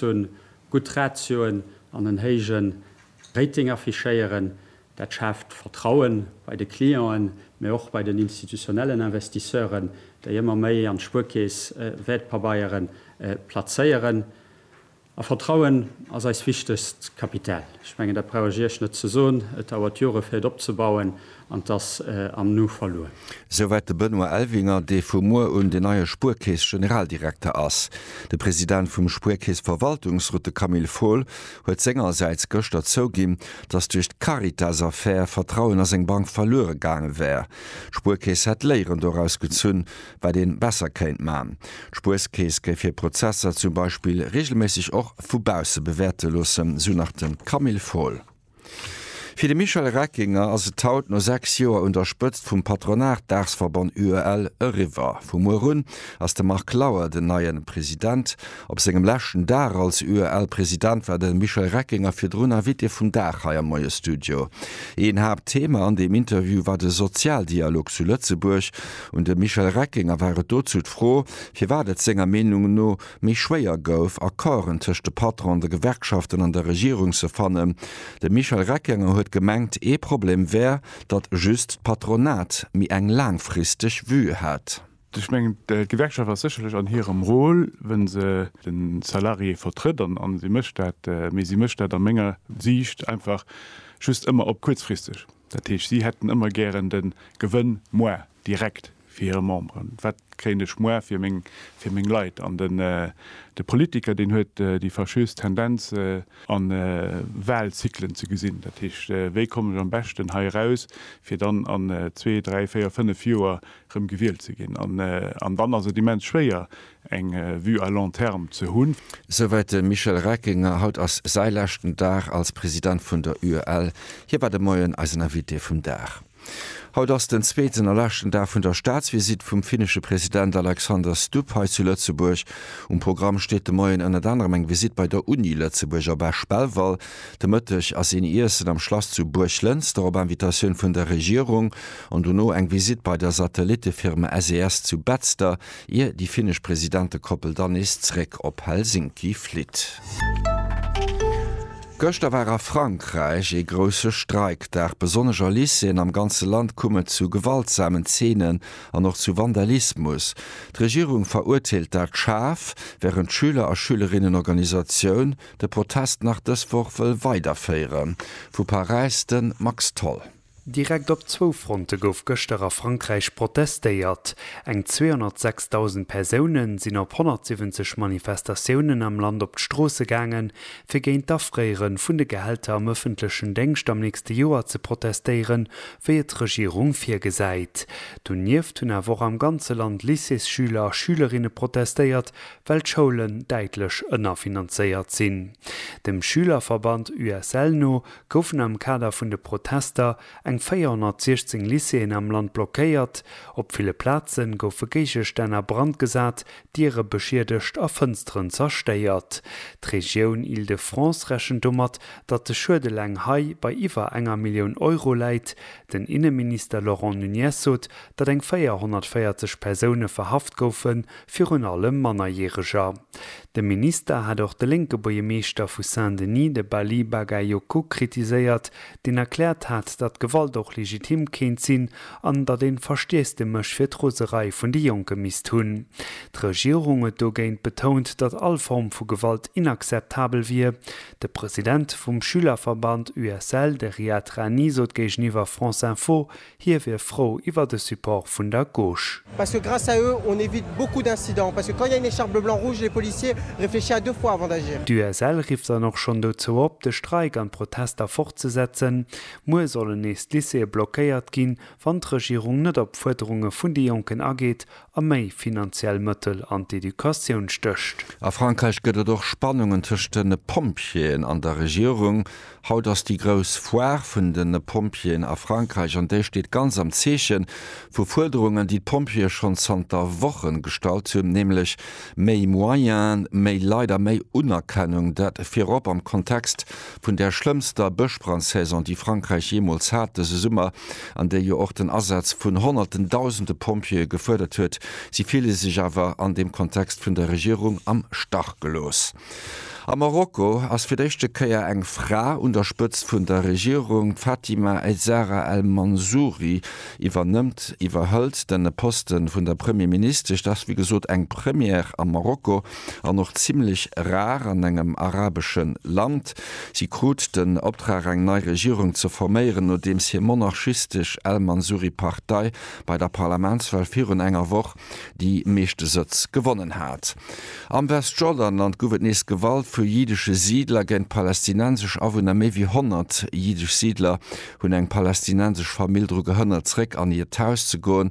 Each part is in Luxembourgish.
hunn, gutt Ratioen an en héijen Rating affichéieren. Dat schaaft Vertrauen bei de Clienten, mä och bei den institutionellen Investisseuren, déi ëmmer méi an d'Spuerkeess Wäertpabeieren plazéieren. A Vertrauen ass eist wichtegst Kapital. Ech mengen, dat brauch ech Iech net ze soen. Et dauert Jore fir et opzebauen. An t'ass am Nu verluer. Souwäit de Benoît Elvinger, dee vu muer un den neie Spuerkeess-Generaldirekter ass. De President vum Spuerkeess-Verwaltungsrot, de Camille Fohl, huet sengersäits gëschter zouginn, datt duerch d'Caritas-Affär Vertrauen a seng Bank verluere gaange wär. D'Spuerkeess hätt Léieren doraus gezunn, wat ee besser kéint man. D'Spuerkeess géif hir Prozesser zum Beispill reegelméisseg och vu bausse bewäerte loossen, sou nach de Camille Fohl. Fir de Michel Reckinger ass et haut, no 6 Joer un der Spëtzt vum Patronatdagsverband UEL, eriwwer. Vu muer un ass de Marc Lauer den neien President. Op sengem leschten Dag als UEL-President war de Michel Reckinger virdrun Invité vum Dag hei am Moie-Studio. Een Haaptthema an deem Interview war de Sozialdialog zu Lëtzebuerg. Un de Michel Reckinger war et dozou d'Fro, firwat et senger Meenung no méi schwéier gouf, Accorden tëscht de Patronen, de Gewerkschaften an der Regierung ze fannen. De Michel Reckenger huet gemengt, ee Problem wär, datt just d'Patronat méi eng laangfristeg Vue hätt. Ech mengen, d'Gewerkschaft ass sécherlech an hirem Rôle, wou se de Salarié vertrëtt, an si mécht dat, mee si mécht dat a menger Siicht einfach just ëmmer op kuerzfristeg. Dat heescht, si hätten ëmmer gären de Gewënn moarn. direkt fir hire Memberen, wat kréien ech muer fir meng fir meng Leit an den de Politiker deen huet déi fâcheuse Tendenz an Wahlzyklen ze gesinn, dat heescht wéi kommen ech am beschten hei eraus fir dann an zwee, dräi, véier, fënnef Joer erëm gewielt ze ginn an an dann ass et immens schwéier eng Vue à long terme ze hunn. Souwäit de Michel Reckinger. Haut ass säi leschten Dag als President vun der UEL. Hie war de Moien eisen Invité vum Dag. Haut ass den zweeten a leschten Dag vun der Staatsvisitt vum finnesche President Alexander Stubb hei zu Lëtzebuerg. Um Programm steet de Moien ënnert anerem eng Visitt bei der Uni Lëtzebuerg a Bech Belval. De Mëtteg ass een Iessen am Schlass zu Buerglënster op Invitatioun vun der Regierung an dono eng Visitt bei der Satellittefirma SES zu Betzder. ier déi finnesch Presidentekoppel dann nees zréck op Helsinki flitt. Gëschter war a Frankräich ee grousse Streikdag. Besonnesch a Lycéeën am ganze Land koum et zu gewaltsamen Zeenen an och zu Vandalismus. D'Regierung verurteelt dat schaarf, wärend d'Schüler a Schülerinnenorganisatioun de Protest nach dës Woch wëll weiderféieren. Vu Paräis de Max Tholl. Direkt op zwou Fronte gouf gëschter a Frankräich protestéiert. Eng 206.000 Persoune sinn op 170 Manifestatiounen am Land op d'Stroosse gaange fir géint d'Afréiere vun de Gehälter am ëffentlechen Déngscht am nächste Joer ze protestéiere wéi et d'Regierung virgesäit. Donieft hunn awer och am ganze Land Lycéesschüler a schülerinne protestéiert, well d'Schoulen däitlech ënnerfinanzéiert sinn. Dem Schülerverband USL no goufen am Kader vun de Protester eng 416 Lycéeën am Land blockéiert, op ville Plaze goufe Géigestänn a Brand gesat, Diere beschiedegt a Fënsteren zerstéiert. D'Regioun Île-de-France rechent domat, datt de Schued eleng hei bei iwwer enger Millioun Euro läit. Den Inneminister Laurent Nunez sot, datt eng 440 Persoune verhaft goufen, virun allem Mannerjäreger. De Minister hat och de lénke Buergermeeschter vu Saint-Denis, de Balyi Bagayoko, kritiséiert, deen erkläert hat, datt Gewalt och legitim kéint sinn an datt een Verstiess de Mësch fir d'Roserei vun de Jonke misst hunn. D'Regierung huet dogéint betount, datt all Form vu Gewalt inakzeptabel wier. De President vum Schülerverband USL, de Riad Rani, sot géigeniwwer France Info, Hie wier frou iwwer de Support vun der Gauche. Parce que grâce à eux, on évite beaucoup d'incidents. Parce que quand il y a une écharpe bleu blanc rouge, les policiers réfléchissent à deux fois avant d'agir. D'USL rifft dann och schonn dozou op, de Streik an d'Protester fortzesetzen. Muer sollen nees d'Lycéeë blockéiert ginn, wann d'Regierung net op Fuerderunge vun de Jonken ageet a méi finanziell Mëttel an d'Educatioun stécht. A Frankräich gëtt et och Spannungen tëscht de Pompjeeën an der Regierung. Haut ass déi grouss Foire vun de Pompjeeën a Frankräich an déi steet ganz am Zeeche vu Fuerderungen, déi d'Pompjeeë schonn zanter Wochen gestallt hunn, nämlech méi Moyene, méi Leit a méi Unerkennung. Dat virop am Kontext Vun där schlëmmster Bëschbrandsaison, déi Frankräich jeemools hat, dëse Summer, an déi jo och den Asaz vun honnerten, dausende Pompjeeë gefuerdert huet, si ville sech awer an deem Kontext vun der Regierung am Stach gelooss. A Marokko ass fir d'éischte Kéier eng Fra un der Spëtzt vun der Regierung. D'Fatima Aizara El Mansouri iwwernëmmt, iwwerhëlt, de Poste vun der Premierministesch. Dat ass wéi gesot eng Première a Marokko. an och zimlech rar an engem arabesche Land. Si krut den Optrag eng nei Regierung ze forméieren, nodeems hir monarchistesch al-Mansuri-Partei bei der Parlamentswahl virun enger Woch déi meeschte Sëtz gewonnen hat. Am Westjordanland guff et nees Gewalt vu jiddesche Siidler géint palästinensesch Awunner. Méi wéi 100 jiddesch Siidler hunn eng palästinensesch Famill dru gehënnert, zeréck an hiert Haus ze goen,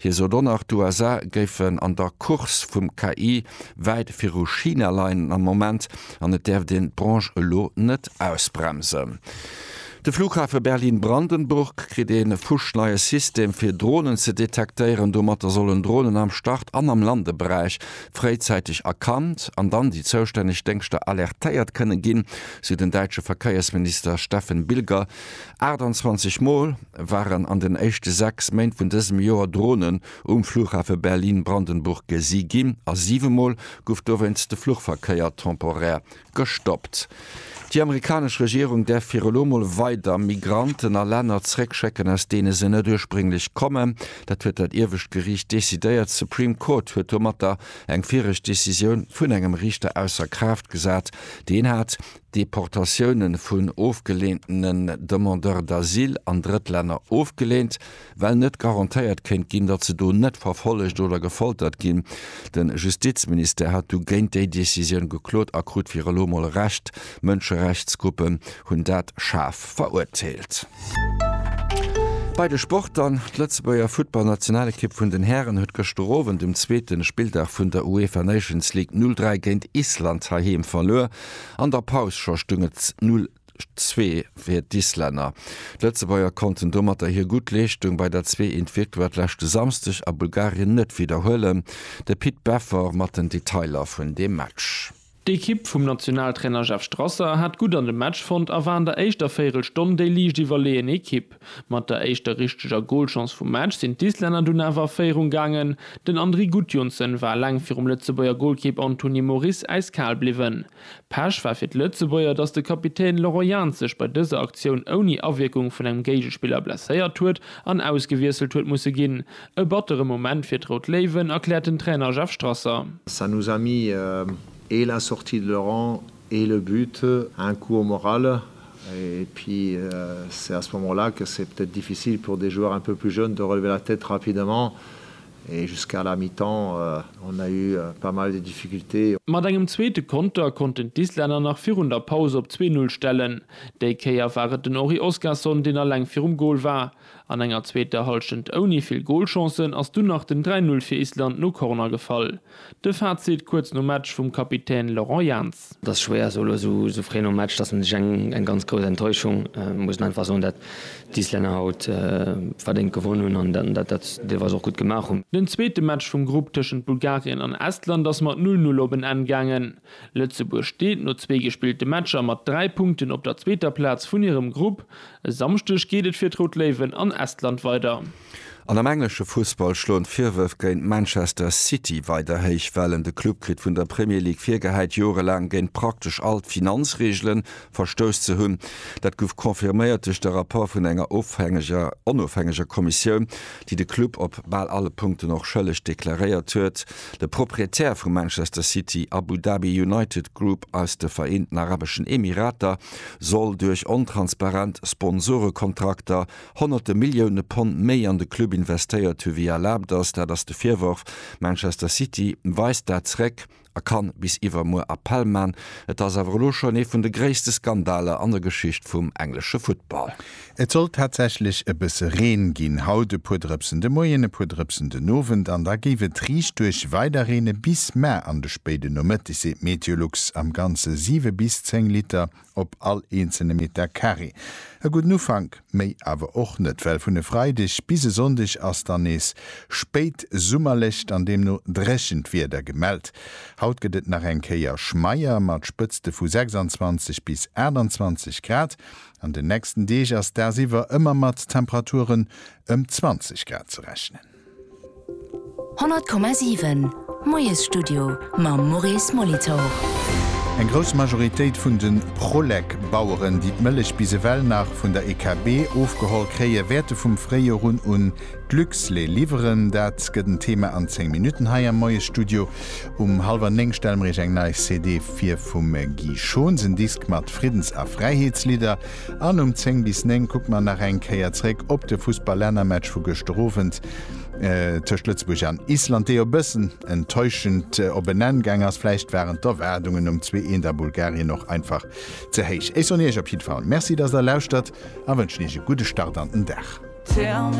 Hie sot och nach, d'USA géifen an der Course vum KI wäit viru China leien am Moment an et däerft een d'Branche elo net ausbremsen. De Flughafe Berlin-Brandenburg kritt ee fuschneie System fir Dronen ze detektéieren. Domatter sollen Dronen am Start an am Landeberäich fréizäiteg erkannt an dann déi zoustänneg Déngschter alertéiert kënne ginn, sou den däitsche Verkéiersminister Steffen Bilger. 28 Mol. waren an den éischte 6 Méint vun dësem Joer Dronen um Flughafe Berlin-Brandenburg gesi ginn a siwe Mol gouf dowéinst de Fluchverkéier temporär gestoppt. Déi amerikanesch Regierung däerf fir elo mol weider Migranten a Länner zréckschécken, aus deene se net ursprénglech kommen. Dat huet dat iewescht Geriicht decidéiert. D'Supreme Court huet domatter eng viregt Decisioun vun engem Riichter ausser Kraaft gesat, deen hat Deportatioune vun ofgeleentene Demandeurs d'asile an Drëttlänner ofgeleent, well net garantéiert kéint ginn, datt se do net verfollegt oder gefoltert ginn. De Justizministère hat du géint déi Decisioun geklot a krut fir elo mol Recht. Mënscherechtsgruppen hunn dat schaarf verurteelt. Bei de Sport dann, D'Lëtzebuerger Futtballnationalekipp vun den Hären huet gëschter Owend um zweete Spilldag vun der UEFA Nations League 0, 3 géint Island heiheem verluer. An der Paus scho stung et 'null zwee' fir d'Islänner. D'Lëtzebuerger konnten domatter hir gutt Leeschtung bei der zwee eent Victoire leschte Samsdeg a Bulgarien net widderhuelen. De Pit Beffer mat den Detailer vun deem Match. D'Ekipp vum Nationaltrainer Jeff Strasser hat gutt an de Match fonnt a war an der éischter Véierelstonn déi liicht iwwerleeën Ekipp. Mat der éischter richteger Golchance vum Match sinn d'Islänner dunn awer a Féierung gaangen. Den Andri Gudjohnsen war laang virum Lëtzebuerger Golkipp Anthony Moris äiskal bliwwen. Pech war fir d'Lëtzebuerger, dass de Kapitän Laurent Jans sech bei dëser Aktioun ouni Awierkung vun engem Géigespiller blesséiert huet an ausgewiesselt huet musse ginn. E battere Moment fir d'Rout Léiwen, erkläert den Trainer Jeff Strasser. Ça nous a mis et la sortie de Laurent Et le but, un cours moral, et puis c'est à ce moment là que c'est peut-être difficile pour des joueurs un peu plus jeunes de relever la tête rapidement et jusqu'à la mi-temps on a eu pas mal de difficultés. Mat engem zweete Konter konnten d'Islänner nach virun der Paus op zwee Null stellen. Déi Kéier war et den Henri Oskarsson, deen alleng virum Gol war. An enger zweeter Hallschent ouni vill Golchancen ass dunn nach den 3 Null fir Island no Corner gefall. De Fazit kuerz nom Match vum Kapitän Laurent Jans. Et ass schwéier esou elo esou fréi nom Match, dass een sech eng ganz grouss Enttäuschung, muss een einfach soen, dat d'Islänner haut verdéngt gewonn hunn an dat dat se deelweis och gutt gemaach hunn. Den zweete Match vum Grupp tëschent Bulgarien an Estland ass mat Null Null op en Enn gaangen. Lëtzebuerg steet no zwee gespillte Matcher mat 3 Punkten op der zweeter Plaz vun hirem Grupp. E Samschdeg geet et fir d'Rout Léiwen an Estland weider. An am englesche Fussball schloen d'Virwërf géint Manchester City weider héich Wellen. De Club kritt vun der Premier League virgehäit, jorelaang géint praktesch all d'Finanzreegelen Verstouss ze hunn. Dat gouf confirméiert duerch de Rapport vun enger ofhängeger, onofhängeger Kommissioun, déi de Club op bal alle Punkten och schëlleg deklaréiert huet. De Proprietär vu Manchester City, Abu Dhabi United Group aus de Vereenten Arabeschen Emirater, soll duerch ontransparent Sponsorekontrakter honnerte Millioune Pond méi an de Club investéiert hu wéi erlaabt ass. Dat ass de Virworf. Manchester City weist dat zréck. a kann bis iwwermuer Appell man. Et ass awer elo schonn ee vun de gréisste Skandaler an der Geschicht vum englesche Futtball. Et soll tatsächlech e bësse Reen ginn, haut e puer Drëpsen de Moien, e puer Drëpsen den Owend an da géif et riichtduerch weiderreene bis mar an de spéide Nomëtteg, seet Meteolux. Am Ganze 7 bis 10 Liter op all eenzelne Meter Carré. E gudden Ufank, méi awer och net, well vun e Freideg bis e Sonndeg ass dann nees spéit summerlecht an deemno dréchent Wieder gemellt. Haut gëtt et nach eng Kéier schmeier mat Spëtzte vu 26 bis 28 Grad. An den nächsten Deeg ass dagsiwwer ëmmer mat Temperaturen ëm 20 Grad ze rechnen. 100,7 Moiesstudio mam Maurice Molitor. Eng grouss Majoritéit vun de Prolec-Baueren, déi d'Mëllech bis ewell nach vun der EKB ofgeholl kréien, wäerte vum Fréijorun un d'Luxlait liwweren. Dat gëtt en Thema an 10 Minutten hei am Moiesstudio. Um hallwer néng stelle mer Iech eng nei CD fir vum Guy Schons, en Disk mat Friddens a Fräiheetslidder. An um 10 bis 9 kucke mer nach eng Kéier zréck op de Fussballännermatch vu gëschter Owend tëscht Lëtzebuerg an Island, dee jo e bëssen enttäuschend op en Enn gaang ass. Vläicht waren d'Erwaardungen nom zwee Eent a Bulgarien och einfach ze héich. Ech soen Iech op jiddwer Fall Merci, dass Der lauschtert a wënschen Iech e gudde Start an den Dag.